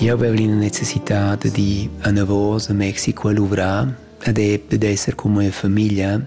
Eu avev l'ina necessità da dir anavos a Mexico a luvrar ed e per esser con mia famiglia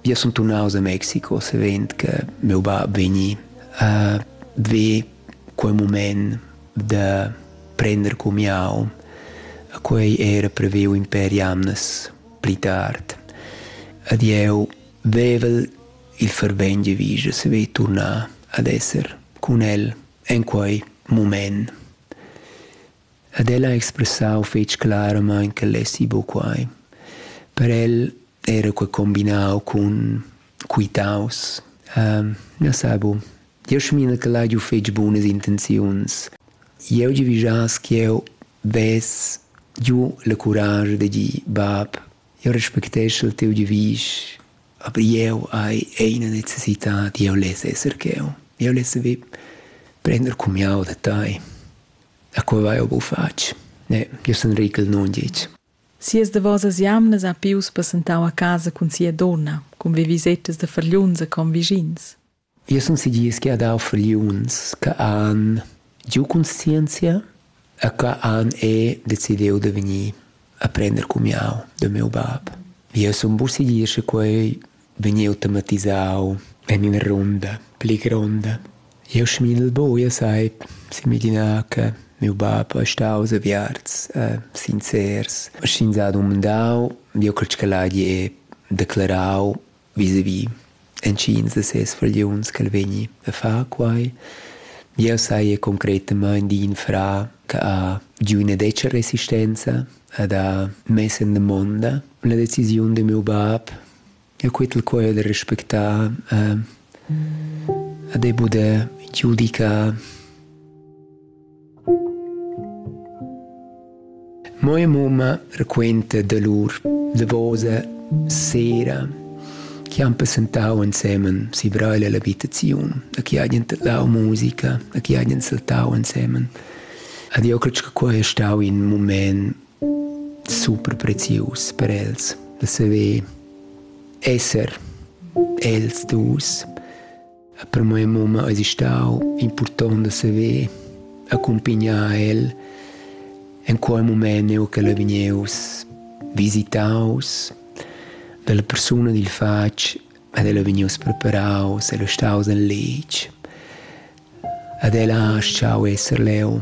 via sun turnaus a Mexico savend che meu bab vegni a ve quel moment da prender con miau quei era preveu in per jamnas pli tard ed eu vevel il fervent de vige se ve turnar ad esser con el en quei mument. Ed el ha expressau fetg claramain ch'el lessi buc quai. Per el era quei combinau cun quitaus. Um, na sa bu. Jasmina che ha giu fetg bunas intenziuns. Jeu gi vigias ch'jeu vess giu la curage de dir bab Io respecteschel teu devisch, aber jeu hai eine necessità di eu less esser cheu. Jeu less vi prender cumiau da tai. A quei vai eu bu fatg. Ne, io sun Rickel non dic. Sias davosas jamnas ha Pius passentau a casa cun sia donna, cun vivisettas da fargliuns e convischins. Jeu sun segirs ch'ei ha dau fragliuns che han giu conscienzia e che han er decidiu da vegnir a prender cumiau da miu bab. Jeu sun pur segirs che quei vegniu tematisau en ina runda pli gronda. Jeu smidel buca sai semiglinar che miu bab ei staus aviarts e sincers. Sch'ins ha dumandau, jeu cret ch'el hagi declarau Visavi intschiens da ses fragliuns ch'el vegni a far quai. Jeu saja concretamain d'in fra che ha giu ina detga resistenza, ed ha mess en damonda la decisiun da miu bab. E quel quai ha da respectar e da poder giudicar. Mia mamma raquenta dolur davosa sera chi han passentau ensemen si Breil ella habitaziun e chi hajan tadlau musica e chi hajan saltau ensemen. Ed io cresch che quai è stau in mument super prezius per els, da saver esser els dus. E per mia mamma es stau impurtont da saver accumpignar el in quei mument eu che el vegneus visitaus dalla persuna dil fatg ed el è vegnius preparaus, el è staus in letg ed el ha schau esser leu.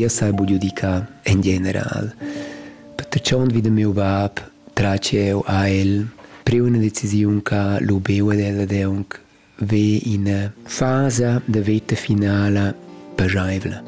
Jas hai budiu di ca en general. Per tschont vi da miu bab traci jeu a el priu ina decisiun ca lu beu ed el ed aunc ve ina fasa da veta finala pascheivla.